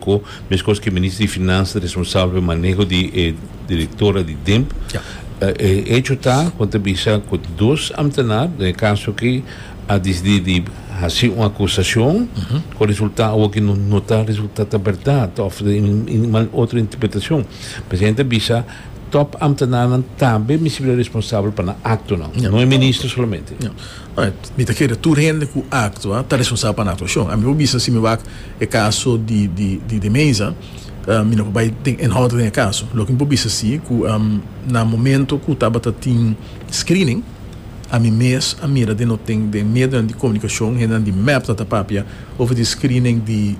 Cu mescos cu Minister di Finanzas responsabel pa e maneho di e directora di DIMP. E hecho ta con ta bisa cu dos ambtenaar den e caso aki a dicidi di haci un acusacion cu resulta awoki no ta resulta ta berdad of otro interpretacion. Presidente a bisa top ambtenaarnan tambe misti bira responsabel pa nan actonan, no e Minister solamente. Mi ta kere tur hende cu actua ta responsabel pa nan actuacion. Ami por bisa si mi wak. E kaso di di de Meza mi no por bai den enhoud den e kaso. Loke mi por bisa si ku na momento ku tabata tin screening ami mes a mira den no tin den medionan di komunikashon hendenan di mep ta ta papia over di screening di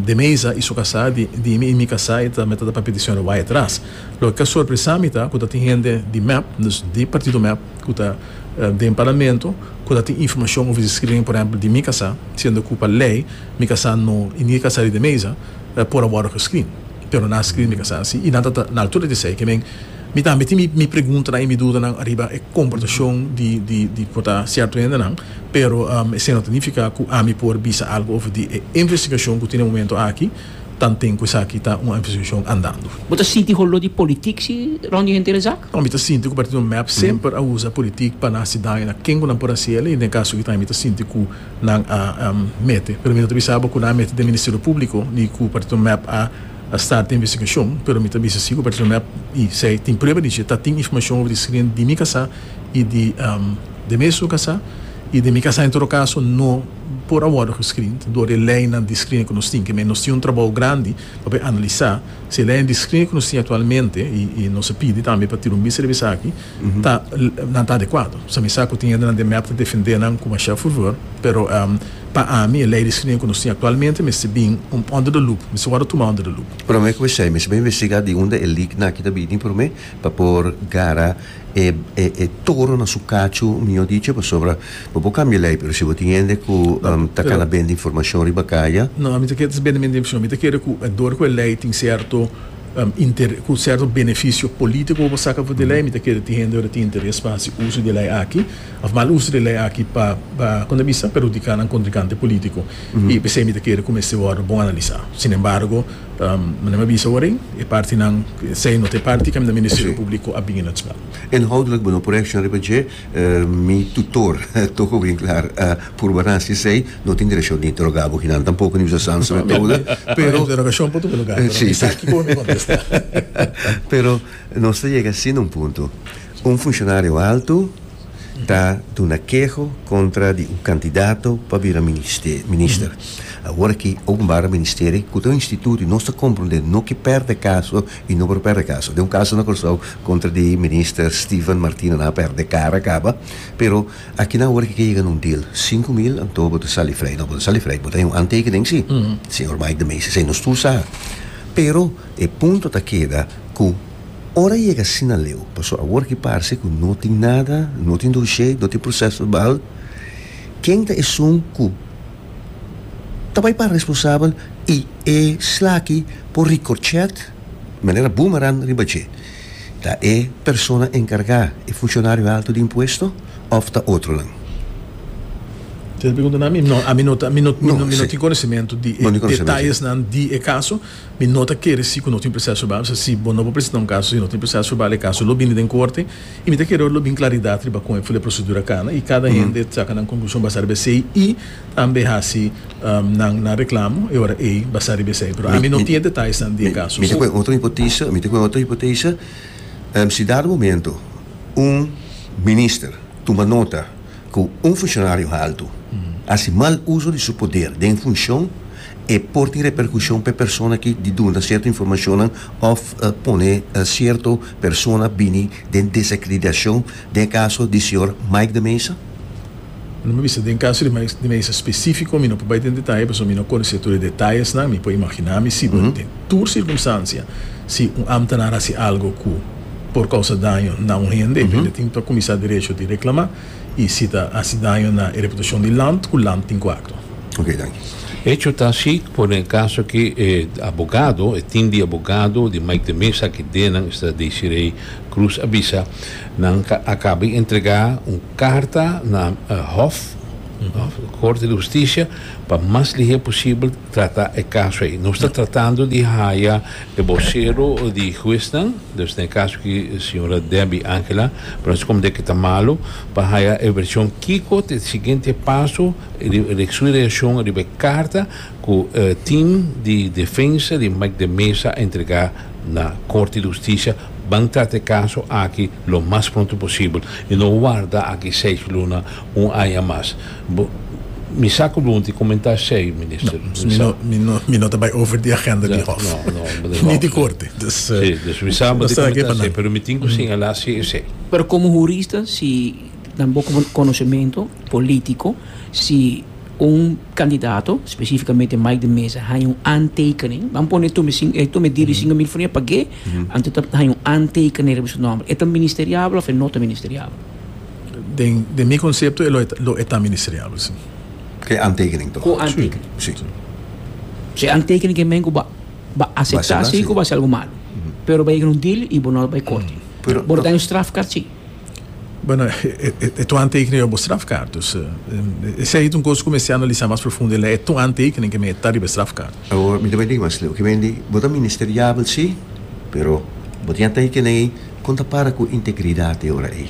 de Meza i su kasá di di mi i mi kasá e ta me ta ta papia di señora Wyatt Ras. Loke ka sorpresa mi ta ku ta tin hende di mep dus di partido mep ku ta den parlamento ku ta tin informashon over di screening por ehempel di mi kasá siendo ku pa lei mi kasá no i ni e kasá riba e mesa por a wòrdu geskri. Pero nan a skri mi kasá así i nan ta na altura di esei. Kimen mi tambe tin mi preguntanan i mi dudanan ariba e komportashon di por ta sierto hendenan, pero esei no ta nifiká ku ami por bisa algu over di e investigashon ku tin e momento aki, tanten ku esaki ta un investigashon andando. Bo ta sinti holó di politik si rònt di henter el zak? No, mi ta sinti ku partido mep semper a usa politik pa na hasi daño na ken ku nan por hasi el i den e kaso aki ta mi ta sinti ku. nan a mete pero mi no ta bisa bo cu nan a mete den Ministerio Publico ni cu Partido Mep a start den investigacion pero mi ta bisa si cu Partido Mep y Sey tin prueba di dje ta tin informacion over di screen di mi casa y di demés su casa y den mi casa en todo caso no por a wordo gescreen door e leynan di screen cu nos tin kimen nos tin un trabao grandi pa por a analisa si e leynan di screen cu nos tin actualmente y nos a pidi tambe pa tira un bista riba esaki ta nan ta adecuado. Sa mi sa cu tin hendenan den mep ta defende nan cu masha fervor, pero pa ami e ley di screening cu nos tin actualmente mester bin un under the loop, mester wordo tuma under the loop. Prome cu esey mester bay investiga di unda e leak naki ta bini prome pa por gara e toro na su cacho, mijo dicho, pasobra bo por cambia e ley pero si bo tin hende cu ta cana bende informacion riba caya. No, ami ta kere ta bende informacion, mi ta kere cu door cu e ley tin cierto ku serto benefisio polítiko bo saka for di e lei, mi ta kere tin hende ora tin interes pa hasi uso di e lei aki òf mal uso di e lei aki pa pa kon ta bisa perhudiká nan kontrikante polítiko i p'esei mi ta kere ku mester wòrdu bon analisá. Sin embargo, manera mi a bisa ora ei, e partinan, sea no ta e parti caminda Ministerio Públiko a bin e notskap. Inhoudelijk, bo no por reakshoná riba dje. Mi tutor toko bien klar, Purbanan si esei no tin direkshon di interoga bo kinan tampoko ni bisa Sanz Metoda, pero Interogashon por tur luga, pero si sa kiko mi kontesta. Pero nos ta yega asina un punto, un funshonario alto ta duna keho kontra di un kandidato pa bira ministe minister. Awor aki Openbare Ministeri ku ta un instituto i nos ta komprondé no ke pèrdè kaso y no por perde caso. Den un caso na Corsou contra di Minister Steven Martina nan a perde cara caba, pero aki nan awor aki ke yega na un deal, sinku mil anto bo ta sali frey, no bo ta sali frey, bo ta hay un antekening si, Señor Mike de Meester esey nos tur sa, pero e punto ta keda cu ora yega asina leu, paso awor aki parse cu no tin nada, no tin doshey, no tin proces verbal, ken ta esun cu. Ta bai pa responsabel i e slaki por ricorchet di manera boomerang riba dje. Ta e persona encarga, e funcionario alto di impuesto of ta otronan? Tin e pregunta na mi? No, ami no tin conocimento di e detalles nan di e caso. Mi no ta kere si ku no tin proseso verbal, p'esei si bo no por presentá un kaso si no tin proseso verbal e kaso lo bini den korte i mi ta kere ora lo bin klaridat riba kon e fo e prosedura kana i kada hende saka nan konklushon basá riba esei i tambe hasi nan reklamo e ora ei basá riba esei pero ami no tin e detallesnan di e kaso. Mi ta ku e otro hipotesa, mi ta ku e otro hipotesa, si dado momento un minister tuma nota ku un funcionario haltu hasi mal uso di su poder den funshon, E por tin reperkushon pa e persona ki di duna sierto informashonnan òf pone sierto persona bini den desakrediashon, den e kaso di señor Mike de Meza? Lo mi bisa, den kaso di Mike de Meza spesífiko mi no por bai den detaye pasobra mi no konosé tur e detayesnan, mi por imaginá misi, pero den tur sirkumstansia si un ámtenar hasi algu ku por kousa daño na un hende, hende tin pa kuminsá derecho di reklamá. y si ta haci daño na e reputacion di land cu land tin cu actua. Ok, danki. Hecho ta asi, cu den e caso aki e abogado, e team di abogado di Mike de Meza cu den nan esta Desiree Cruz a bisa, nan a caba di entrega un carta na Hof, Corte di Husticia, pa mas lihe posibel trata e caso ei. Nos ta tratando di haya e vocero di huesnan, dus na e caso aki señora Debbie Angela, pero nos scom de ke ta malo, pa haya e version kico ta e siguiente paso riba su reaccion riba e carta cu e team di defensa di Mike de Meza a entrega na Corte di Husticia. Ban trata e caso aki lo mas pronto posibel y no warda aki seis luna un aña mas. Bo, mi sa ku bo unti komentá esei, Minister. No, mi no, mi no, mi no ta bai over di agenda di Hof. No, no, bo ta Ni di Korte. Dus, Si, dus mi sa bo ta komentá esei, pero mi tin ku señalá si esei. Pero komo hurista, si nan bo konosementu polítiko, si un kandidato, spesífikamente Mike de Meza, haña un aantekening, nan pone tu mi sing, e tu mi diri singu mil furnía, pag'é? Anto ta haña un aantekening riba su nòmber. E ta ministeriabel òf e no ta ministeriabel? Den den mi concepto e lo e lo e ta ministreable si. Cu aantekening toch? Cu aantekening. Si. Si. Si e aantekening ke men cu ba ba acepta asi cu ba si algo malo. Pero bay yega na un deal y bo no lo bay corte. Pero bo lo ta na un strafkaart si. Bueno e to aantekening riba bo strafkaart dus esey ta un cos cu mester analisa mas profundo el a e to aantekening ke men e ta riba e strafkaart. Awor mi ta bay dig mas leu ke men di bo ta ministreable si pero bo tin a teken ey Kon ta para ku integridat e ora ei?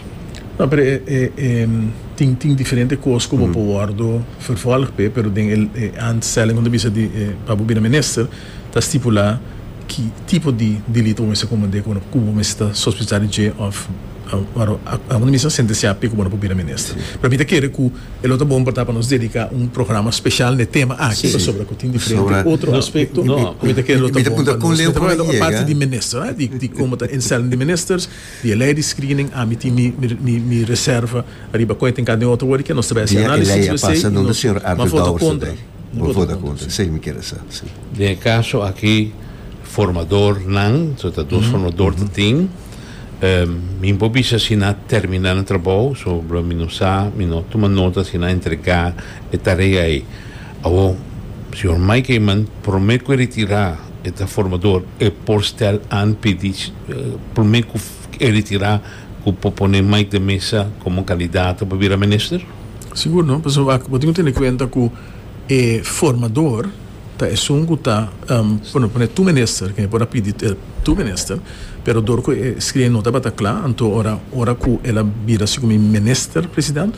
No, pero e tin tin diferente kos ku bo por wòrdu vervolg p'e, pero den e e aanstelling kon ta bisa di e pa bo bira minister ta stipulá ki tipo di delito bo mester komend'é ku bo ku bo mester ta sospechá di dje òf kon ta bisa sentensiá p'e ku bo no por bira minister. Pero mi ta kere ku. E lo ta bon por ta pa nos dedica un programa special n'e tema aki pasobra cu tin diferente otro aspecto. Mi ta kere lo ta bon pa nos. Mi ta wou lei aparte di Minister, di como ta instellen di Ministers, di e lei di screening, ami tin mi reserva ariba con e tin cana den otro worde kia nos ta bay haci análisis riba esey y nos maford'e contra. Bo for ta contra, esey mi kere sa. Den e caso aki formadornan, ta dos formador ta tin. Mi bo bisa si na termina na trabou, so lo mi no sa, mi no tuma nota si na entrega e tarea ei. Awor, Señor Mike Eman, prome cu e retira e ta formador, e por stel an pidi prome cu e retira cu por pone Mike den mesa como candidato pa bira minister? Sigur no, pasobra bo tin cu tene cuenta cu e formador Ta esun cu ta pone tu minister, que e por a pidi tu minister, pero dor cu e scribi e nota tabata cla, anto ora ora cu el a bira si cu mi minister president,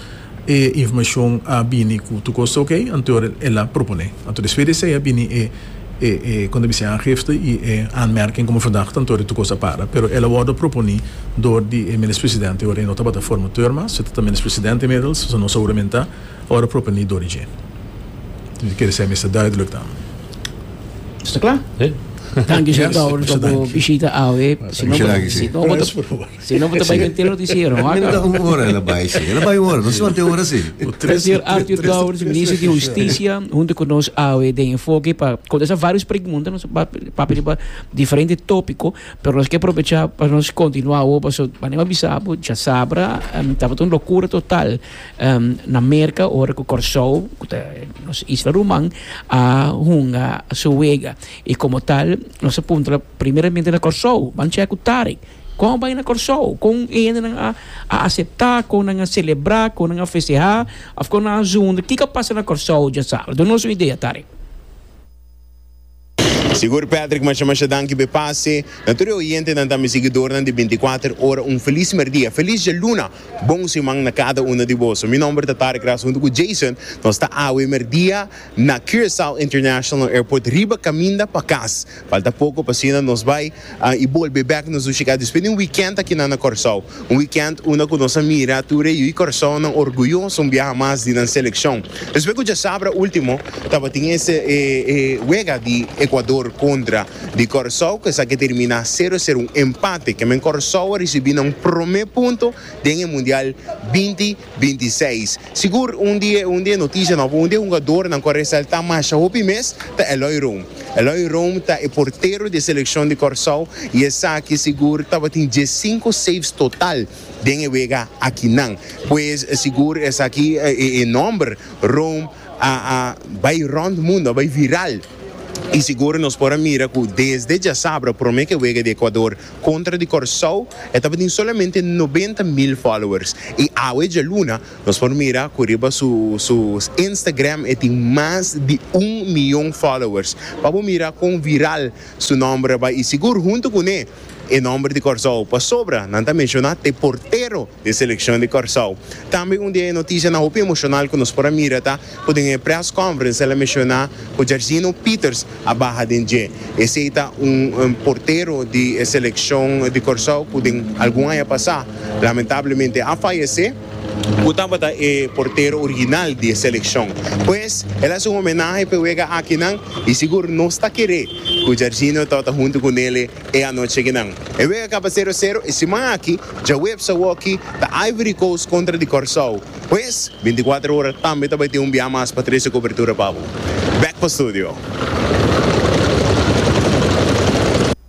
e informacion a bini cu tur cos ta ok, anto ora el a propone. Anto despues di esey a bini e e e con ta bis'e aangifte y e aanmerking como verdachte, anto ora tur cos a para. Pero el a wordo proponi dor di e minister president, ora e no tabata formateur mas, e ta ta minister president inmiddels, so no sa huramentá. Ora proponi dor di dje. Di kere sa e mester duidelijk dan. Sta kla. Danki Shen Towers pa bo bishita awe. Si no bo ta bai den te notisiero. Mi no ta un ora e la bai si. E la bai un ora, no si mante un ora si. Señor Arthur Towers, Minister di Husticia, hunto ku nos awe den enfoke pa kontesta varios pregunta. Nos a papia riba diferente topiko, pero nos ke aprovecha pa nos kontinua awo paso manera mi bisa bo djasabra tabata un lokura total. Na Merka ora ku Kòrsou, ku ta nos isla ruman, a hunga su wega. I komo tal, nos a puntra primeramente na Kòrsou. Ban chèk ku Tarik. Kon a bai na Kòrsou? Kon e hendenan a a aseptá? Kon nan a selebrá? Kon nan a festehá? Òf kon nan a zunda? Kiko a pasa na Kòrsou djasaru? Duna nos un idea, Tarik. Sigur Patrick masha masha danki be pase na tur e oyentenan tambe siguidornan di binti kuater ora un felis merdia felis dialuna bon siman na kada uno di boso mi nomber ta Tarek Ras hunto ku Jason nos ta awe merdia na Curaçao International Airport riba kaminda pa kas falta poko pa asina nos bai I bolbe bek nos Ushika despues di un weekend akinan na Kòrsou. Un weekend unda ku nos a mira tur e yu kòrsounan orguyoso un biaha mas di nan selekshon. Despues ku djasabra ultimo tabatin e wega di Ekuador kontra di Kòrsou ku esaki a terminá sero sero, un empate. Kèmen Kòrsou a risibí nan promé punto den e mundial binti. Binti seis. Sigur un di e un di e noticia nobo, un di e hungadornan cu a resalta masha hopi mes ta Eloy Room. Eloy Room ta e portero di e seleccion di Corsou y esaki sigur tabatin diescinco saves total den e wega akinan. Pues sigur esaki e nomber Room a bay rond mundo, a bay viral. Y sigur nos por a mira cu desde djasabra prome ke wega di Ecuador contra di Corsou e tabatin solamente noventa mil followers y awe djaluna nos por mira cu riba su su Instagram e tin mas di un miyon followers pa bo mira con viral su nomber a bay y sigur hunto cu ne E nomber di Kòrsou pasobra nan ta menshoná t'e portero di e selekshon di Kòrsou. Tambe un di e notishanan hopi emoshonal ku nos por a mira ta ku den e près kònferens el a menshoná ku Jairzinho Pieters a baha den dje. Esei ta un portero di e selekshon di Kòrsou ku den algun aña pasá lamentablemente a fayesé. Cu tabata e portero original di e seleccion. Pues, el haci un homenahe p'e wega akinan y sigur nos ta kere cu Jarginho ta ta hunto cu Nele e anochi akinan. E wega caba cero cero e siman aki, djaweps awoki, ta Ivory Coast contra di Corsow. Pues, binticuater ora tambe ta bay tin un biaha mas pa trece cobertura pa bo. Bek pa studio.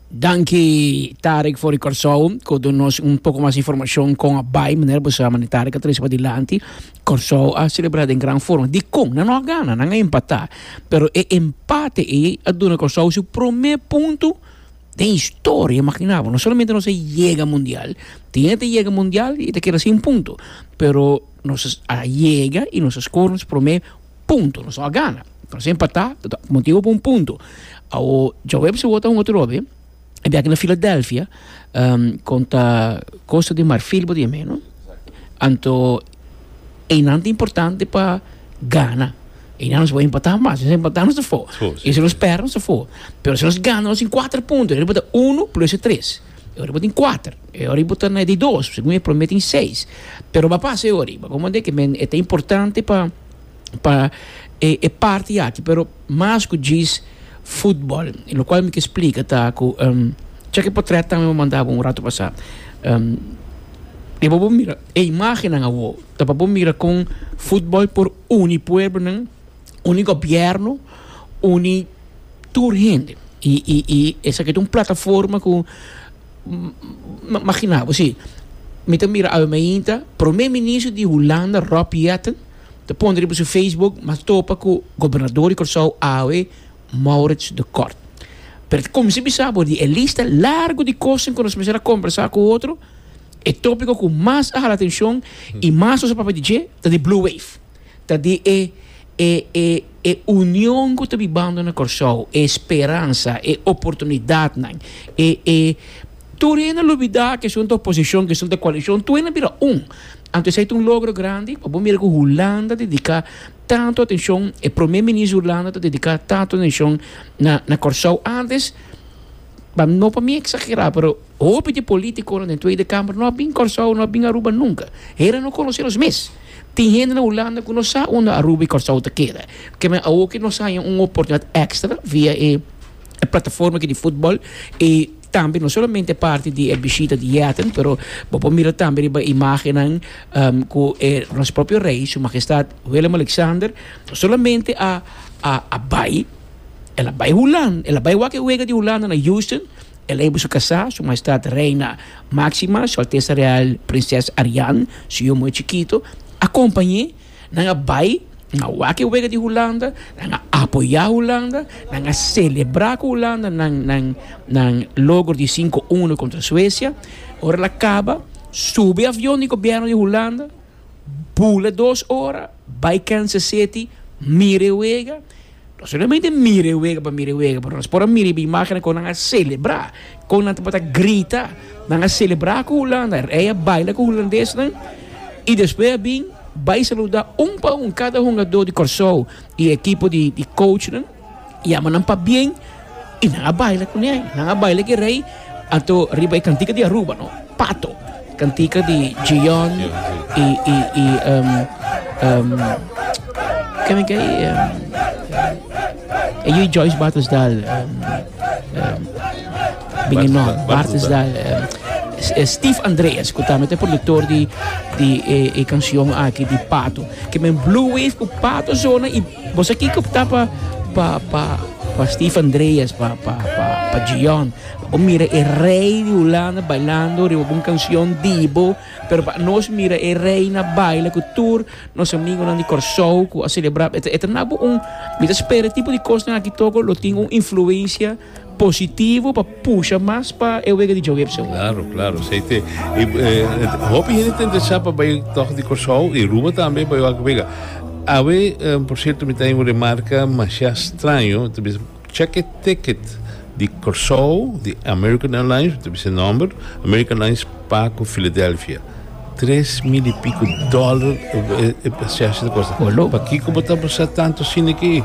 Danki Tarik for di Kòrsou ku dun nos un poko mas informashon kon a bai manera bo sa mane Tarik a trese padilanti Kòrsou a selebrá den gran forma dikon nan no a gana nan a empatá pero e empate ei a duna Kòrsou su promé punto den historia imaginabo no solamente nos a yega mundial tin e ta yega mundial i ta keda sin punto pero nos a yega i nos a skor nos promé Punto. Nos no a gana. Nos a empatá. Motibu pa un punto. Awo, djawebes e wòrdu honger ròbi, e biaha na Filadelfia, konta Kosta di Marfil bo ta yam'é, no? Anto einan ta importante pa gana. Einan nos por empatá mas. Si nos empatá nos ta for. I si nos pèrdè nos ta for. Pero si nos gana nos tin kuater punto. Nos por ta unu plus e tres. E ora bo tin kuater. E ora bo ta na di dos. Segun e promé tin seis. Pero ba pasa e ora ei. Bo a komprendé ke men e ta importante pa, pa e, e parti aki. Pero mas ku djis futbòl. Lo kual mi ke splika ta ku, check e potrèt tambe bo manda bo un ratu pasá. Deba bo mira e imágennan awor. Ta pa bo mira kon futbòl por uni pueblonan. uni gobièrnu uni tur hende i i i esaki ta un plataforma ku magina bo si mi ta mira awe mainta prome minister di hulanda Rob Jetten ta pone riba su facebook a topa ku gobernador di Kòrsou awe Maurits de Kort pero ta kuminsa bisa bo di e lista largu di kosnan ku nos mester a kombersá ku otro e topiko ku mas a hala atenshon i mas nos a papia di dje ta di blue wave. ta di e e e e union ku ta bibando na Kòrsou, e speransa, e oportunidatnan, e e tur hende a lo bida ke asuntu ta oposishon, ke asuntu ta koalishon, tur hende a bira un. Anto esei ta un logro grandi, pa bo mira ku Hulanda dediká tantu atenshon, e promé minister di Hulanda ta dediká tantu atenshon na na Kòrsou antes, pa no pa mi exagera pero hopi di politiconan den tweede kamer no a bin Kòrsou no a bin Aruba nunka heren no konosé nos mes tin hende na Hulanda ku no sa unda Aruba i Kòrsou ta keda ke men awo ke nos haña un oportunidat ekstra via e plataforma aki di futbòl i tambe no solamente parti di e bishita di yèten pero bo por mira tambe riba e imagennan ku e nos propio Rei Su Magestat Willem Alexander no solamente a a bai. El a bai Hulan, el a bai wak e wega di Hulanda na Houston, el a bai su kasá, Su Maestat Reina Máxima, Su Altesa Real Prinses Ariane, su yu moe chikitu a kompañ'é. Nan a bai, nan a wak e wega di Hulanda, nan a apoyá Hulanda, nan a selebrá ku Hulanda nan nan nan logro di sinku uno kontra Suesia. Ora el a kaba, subi avion di gobièrnu di Hulanda, bula dos ora, bai Kansas City mira e wega. Nos no solamente mira e wega pa mira e wega, pero nos por a mira e bimágennan kon nan a selebrá, kon nan ta por ta grita, nan a selebrá ku Hulanda, rei a baila ku hulandesnan i despues a bin bai saludá un pa un kada hungadó di Kòrsou i e ekipo di kouchnan, yama nan pabien. y nan a baila cu ne. Nan a baila ki rey ato riba e cantica di Aruba, no? Pato. Cantica di Gion y, y, y, um, um, ken men kei? Um, e Joyce Bartelsdal, um, um, bingen non, Bartelsdal, um, Eh, Steve Andreas, que también es productor de, de eh, eh, canción aquí de Pato. Que me Blue Wave con Pato Zona y Bo sa kiko ta pa pa pa pa Steve Andreas pa pa pa pa Gion bo mira e rey di Hulanda bailando riba un cancion dibo pero pa nos mira e rey na baila cu tur nos amigonan di Corsou cu a celebra e ta e ta nabo un mi ta spera e tipo di cosnan aki toco lo tin un influencia positivo pa pusha mas pa e wega di djawe opcion. Claro, claro, esei te hopi hende ta interesa pa bai tog di Corsou y Aruba tambe pa wak wega. Awe, por cierto, mi ta hay un remarca masha straño, ta bisa check e ticket di Corsou di American Airlines, mi ta bisa e nomber, American Airlines pa cu Philadelphia, tres mil y pico dollar e pasaje ta costa. Pa'kico bo ta sa tanto asina aki?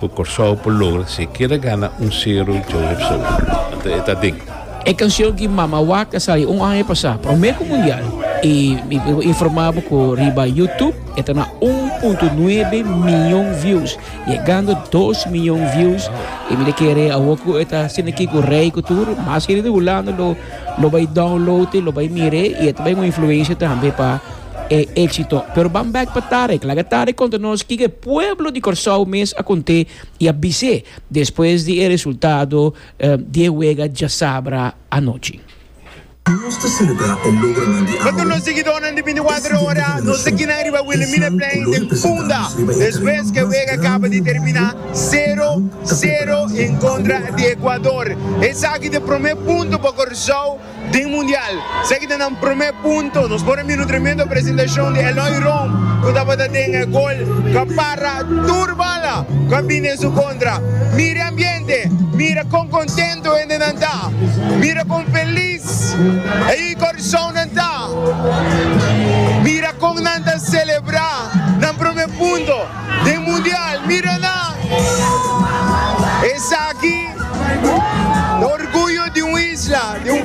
Cu Corsou por logra si e keda gana un sero djou hep so. Anto e ta den. E cancion ki Mama Wak a sali un aña pasá prome cu Mundial y mi por informa bo cu riba YouTube e ta na un punto nuebe miyon views, yegando dos miyon views y mi ta kere awo cu e ta asina aki cu Rey cu tur mas hende di Hulanda lo lo bay download e lo bay mire y e ta bay un influencia tambe pa e éksito. Pero ban bèk pa Tarek. Laga Tarek konta nos kiko e pueblo di Kòrsou mes a kont'é i a bis'é despues di e resultado di e wega djasabra anochi. Nos ta selebrá e logronan di awe, e siguiendo di tradishon ku lo representá nos riba e tereno mas grandi di Bolivia, Kòrsou ta prepará pa e wega. Den Mundial. Esaki ta nan prome punto. Nos por a mira un tremendo presentashon di Eloy Rom ku tabata den e gol ku a para tur bala ku a bini den su kontra. Mira e ambiente, mira kon kontentu hendenan ta, mira kon felis e korsonnan ta, mira kon nan ta selebrá nan prome punto den Mundial. Mira nan, esaki ta orguyo di un isla, di un.